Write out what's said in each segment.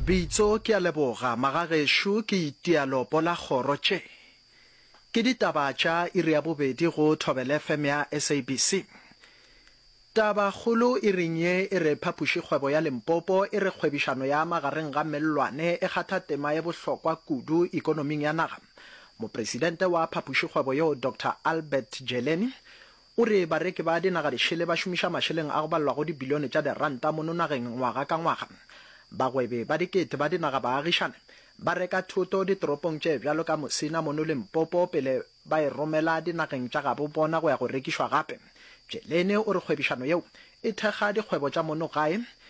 Bitso, Ke a leboga magagešo ke itia leopo la kgoro tše. Ke ditaba tša iri ya bobedi go Thobela FM ya SABC. Taba kgolo iring ye e re Phapoši kgwebo ya Limpopo e re kgwebišano ya magareng ga mellwane e kgatha tema ye bohlokwa kudu ikonoming ya naga. Mopresidente wa Phapoši kgwebo yeo Doctor Albert Jeleni O re bareki ba dinagadešele ba šomiša mašeleng a go balelwago dibilione tša diranta mono nageng ngwaga ka ngwaga. Bagwebi ba dikete ba dinagabaagišane ba reka thoto ditoropong tše bjalo ka Musina mono Limpopo pele ba e romela dinageng tša gabo bona go ya go rekišwa gape. Jelene o re kgwebišano yeo e thekga dikgwebo tša mono gae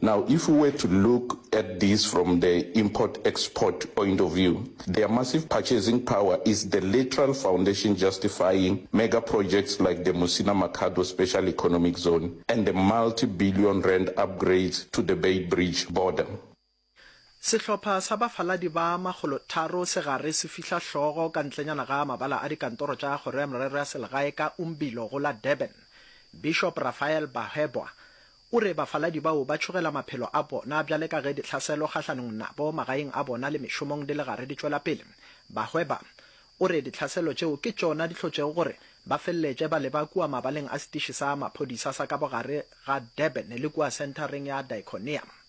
Now if u were to look at this from the import export point of view, their massive purchasing power is the literal foundation justifying mega projects like the Musina Makhado Special Economic Zone and the multi billion rand upgrades to the Beitbridge border. Sehlopha sa bafaladi ba makgolo tharo se gare se fihla hlogo ka ntlenyana ga mabala a dikantoro tša Kgoro ya Merero ya Selegae ka Umbilo go la Durban. Bishop Raphael Bahwebwa O re bafaladi bao ba tšhogela maphelo a bona bjale ka ge dihlaselo kgahlanong nabo magaeng a bona le mešomong di le gare di tšwela pele. Bahweba. O re dihlaselo tšeo ke tšona di hlotšego gore ba feleletše ba leba kua mabaleng a setiši sa maphodisa sa ka bogare ga Durban le kua senthareng ya Diconia.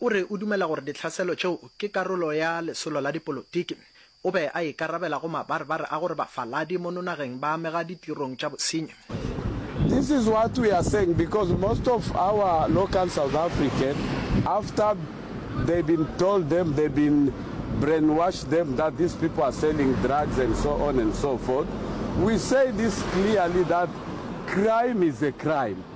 O re o dumela gore ditlhaselo tšeo ke karolo ya lesolo la dipolotiki. O be a ikarabela go mabarebare a gore bafaladi mo nonageng ba amega ditirong tša bosenyi. This is what we are saying because most of our local South African after they been told them they been brainwash them that these people are selling drugs and so on and so forth we say this clearly that crime is a crime.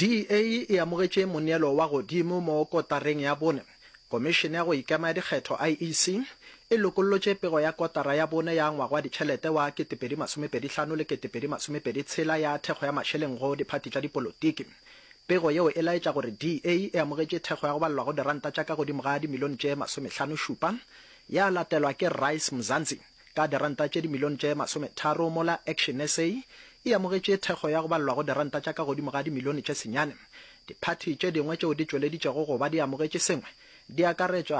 DA e amogetše moneelo wa godimo mo kotareng ya bone. Komišene ya go Ikema ya Dikgetho, IEC, e lokollotše pego ya kotara ya bone ya ngwaga wa ditšhelete wa 2025 le 2026 ya thekgo ya mašeleng go diphathi tša dipolotiki. Pego yeo e laetša gore DA e amogetše thekgo ya go balelwa go diranta tša ka godimo ga dimilione tše masomešlano šupa ya latelwa ke Rise Mzansi ka diranta tše dimilione tše masometharo, mola ActionSA e amogetše thekgo ya go balelwago diranta tša ka godimo ga dimilione tše senyane. Diphathi tše dingwe tšeo di tšweleditšego go ba di amogetše sengwe di akaretšwa.